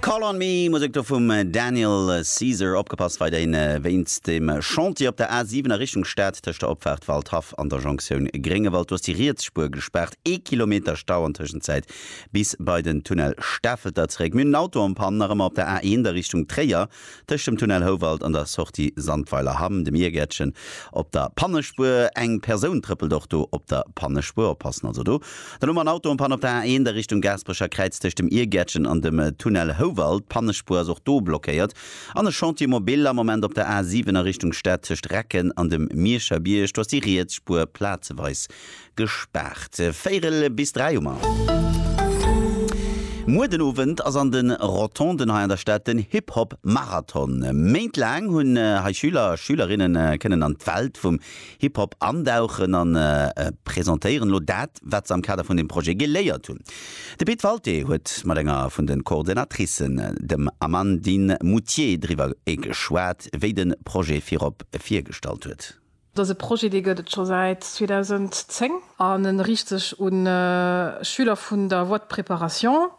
Call on me, Musek do vum Daniel Caesar. Opgepasst wei dei ne wéinst dem Chantier op der A7 a Richtung Stad tëscht der Opfahrt Waldhaff an der Jonktioun Gréngewald. Do ass déi riets Spuer gespaart. Ee Kilometer Stau an Tëschenzäit bis bei den Tunnel Stafelter zeréck. Mir hunn en Auto en Panne nach ëmmer op der A1 a Richtung Tréier. Tëscht dem Tunnel Houwald an der Sortie Sandweiler Hamm, dem Iergärtchen op der Pannespuer, eng Persoun trëppelt och do op der Pannespuer, oppassen also do, dann hu mer en Auto en Panne op der A1 a Richtung Gaasperecher Kräiz tëscht dem Iergärtchen an dem Tunnel Houwald, d'Pannespuer ass och do blockéiert, an e Chantier mobile am Moment op der A7 a Richtung Stad tëscht Recken an dem Mierscher Bierg, do ass déi riets Spuer plazeweis Gespaart. Véierel bis dräi hu mer. Muer den Owend ass an de Rotonden hei an der Stad den Hip-Hop Marathon. Méint laang hunn hei Schüler a Schülerinne kënnen an d'Welt vum Hip-Hop andauchen a presentéieren elo dat, wat se am Kader vun dem Projet geléiert hunn. De Pit Walté huet mat enger vun de Coordinatricen, dem Amandine Moutier, driwwer geschwat, wéi de Projet virop virgestallt huet. Et ass e Projet, dee gëtt et scho säit 2010 an e riicht sech u Schüler vun der Voie de préparation,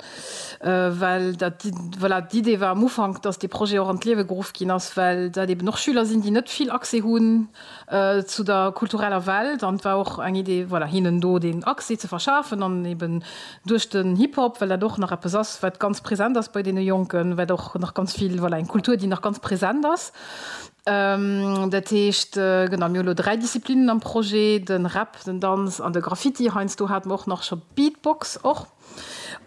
well dat, voilà, d'Idee war am Ufank, dass dee Projet och an d'Liewe geruff ginn ass, well dat eeben och Schüler sinn, déi net vill Accès hunn zu der kultureller Welt. An et war och eng Idee, voilà, hinnen do deen Accès ze verschafen an eeben duerch den Hip-Hop, well dat och nach eppes ass, wat ganz present ass bei deene Jonken, wat och nach ganz vill, voilà, eng Kultur, déi nach ganz present ass. Dat heescht, genau, mir hu lo dräi Disziplinen am Projet, de Rap, den Danz an de Graffiti. Heiansdo hate mer och nach scho Beatbox och.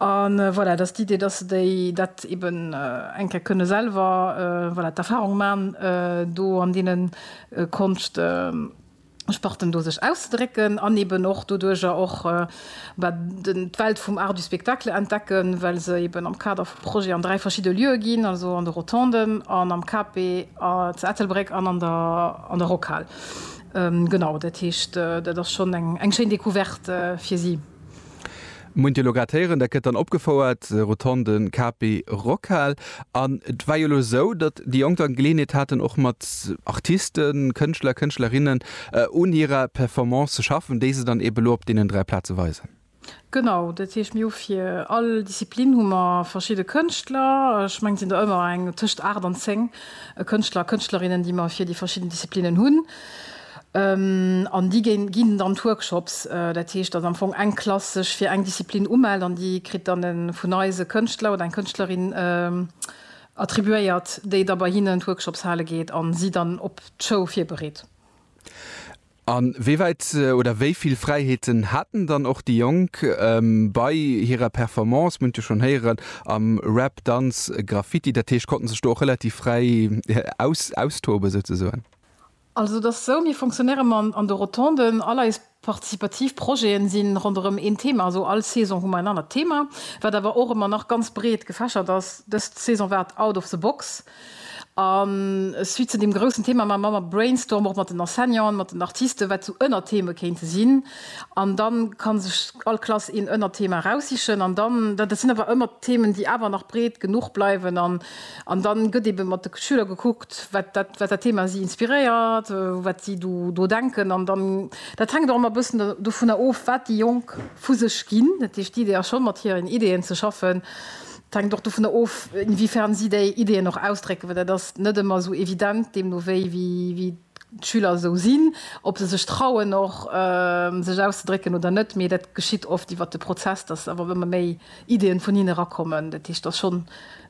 A voilà, dat ass d'Idee, dass se déi, dat eeben eng Kéier kënne selwer, voilà, d'Erfahrung man do an deene Konscht. Sparten do sech auszedrécken an eben och doduerjer och d'Welt vum Art du spectacle entdecken, well se eben am Kader vu Projeten an dräi verschidde Lieue ginn, also an de Rotonden an am KP zu Ettelbréck an an der Rockhal. Genau, dat heescht, dat ass schonn eng schéin Decouverte fir si. Muent jo lo grad héieren, dat gëtt dann opgefouert, Rotonde KP Rockhal. An et war jo lo esou, datt déi Jonk dann Geleeënheet haten och mat Artisten, Kënschtler, Kënschtlerinnen un hirer Performance ze schaffen, déi se dann eebe lo op deenen 3 Plaze weisen. Genau, dat heescht mir hu fir all Disziplin hu mer verschidde Kënschtler, ech mengen et sinn der ëmmer eng tëscht 8 an 10 Kënschtler a Kënschtlerinnen, déi mer fir déi verschidden Disziplinnen hunn. An déi ginn dann d'Workshops. Dat heescht, datt am Fong eng Klass sech fir eng Disziplin umellt an déi kritt dann e vun eis e Kënschtler oder eng Kënschtlerin attribuéiert, déi da bei hinnen d'Workshops hale geet a si dann op d'Show virbereet. A wéi wäit oder wéi vill Fräiheeten haten dann och déi Jonk bei hirer Performance, mir hunn et jo schonn héieren, am Rap, Danz, Graffiti? Dat heescht, konnte sech do och relativ fräi austoben souzesoen? Also et ass esou, mir fonctionnéiere man an de Rotonden. All eis participativ Projete si ronderëm een Thema, also all Saison hu mer en anert Thema, wat awer och ëmmer nach ganz breet gefächert ass. Dës Saison war et Out of the Box. A suite zu deem groussen Thema maache mer Brainstorm och mat den Enseignanten, mat den Artisten, wat esou Ënnertheme kéinte sinn. An da ka sech all Klass een Ënnerthema eraussichen. An dann, dat sinn awer ëmmer Themen, déi awer nach breet genuch bleiwen. An dann gëtt eben mat de Schüler gekuckt, wat dat Thema si inspiréiert, wat si do denken. An dann, dat hänkt och ëmmer e bëssen dovunner of, wat déi Jonk vu sech ginn. Dat heescht, d'Idee ass schonn, mat hiren Ideeën ze schaffen. Et hänkt och dovunner of, inwiefern si déi Ideeën och ausdrécken, well dat ass net ëmmer esou evident, deemno wéi d'Schüler esou sinn, ob se sech trauen och sech auszedrécken oder net. Mee dat geschitt oft iwwer de Prozess, datt awer ëmmer méi Ideen vun hinne rakommen. Dat heescht, dass schonn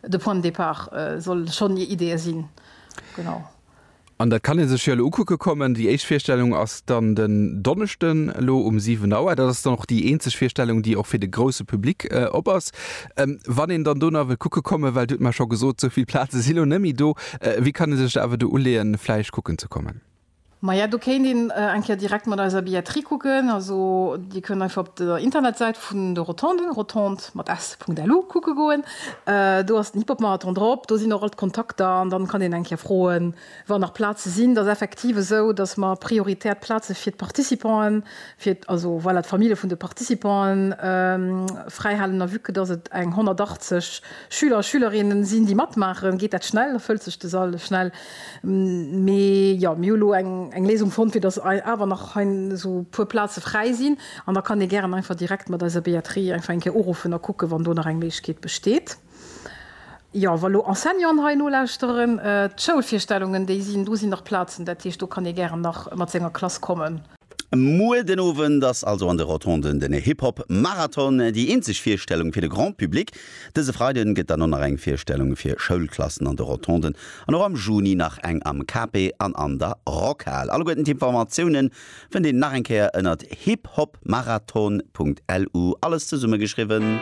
de Point de départ soll schonn hir Ideeë sinn. Genau. An dat kann ee sech jo elo ukucke kommen. Déi éischt Virstellung ass dann den Donneschden elo um 7 Auer. Dat ass dann och déi eenzeg Virstellung, déi och fir de grousse Public op ass. Wann een dann do nach wëll kucke kommen, well Dir hutt mer scho gesot, esou vill Plaze si lo net méi do, wéi kann ee sech da awer do uleeën, vläicht kucken ze kommen? Maja, do kéint een eng Kéier direkt mat eiser Billetterie kucken. Also Dir kënnt einfach op der Internetsäit vun de Rotonden, rotondes mat s, .lu, kucke goen. Do ass den Hip-Hop-Marathon drop, do sinn och all d'Kontakter an dann kann een eng Kéier froen, wann nach Plaze sinn. Et ass effektiv esou, dass mer prioritär d'Plaze fir d'Participanten, fir, also voilà, d'Famille vun de Participanten fräihalen. A vue que dass et eng 180 Schüler a Schülerinnen sinn, déi matmaachen, geet dat schnell, da fëllt sech de Sall schnell. Mee jo, mir hu lo eng Léisung fonnt, fir datt awer nach hei esou e puer Plaze fräi sinn. An da kann ee gären einfach direkt mat eiser Billetterie einfach eng Kéier uruffen a kucken, wann do nach eng Méiglechkeet besteet. Jo, wa lo Enseignanten hei nolauschteren, d'Schoulvirstellungen, déi sinn, do sinn nach Plazen. Dat heescht, do kann ee gären nach mat senger Klass kommen. Muer den Owend ass also an de Rotonden den Hip Hop Marathon, déi eenzeg Virstellung fir de Grand Public. Dëse Freiden gëtt dann och nach eng Virstellung fir Schoulklassen an de Rotonden an och am Juni nach eng am Cape an an der Rockhal. Alleguerten d'Informatiounen fënnt een nach eng Kéier ënnert hiphopmarathon.lu, alles zesummegeschriwwen.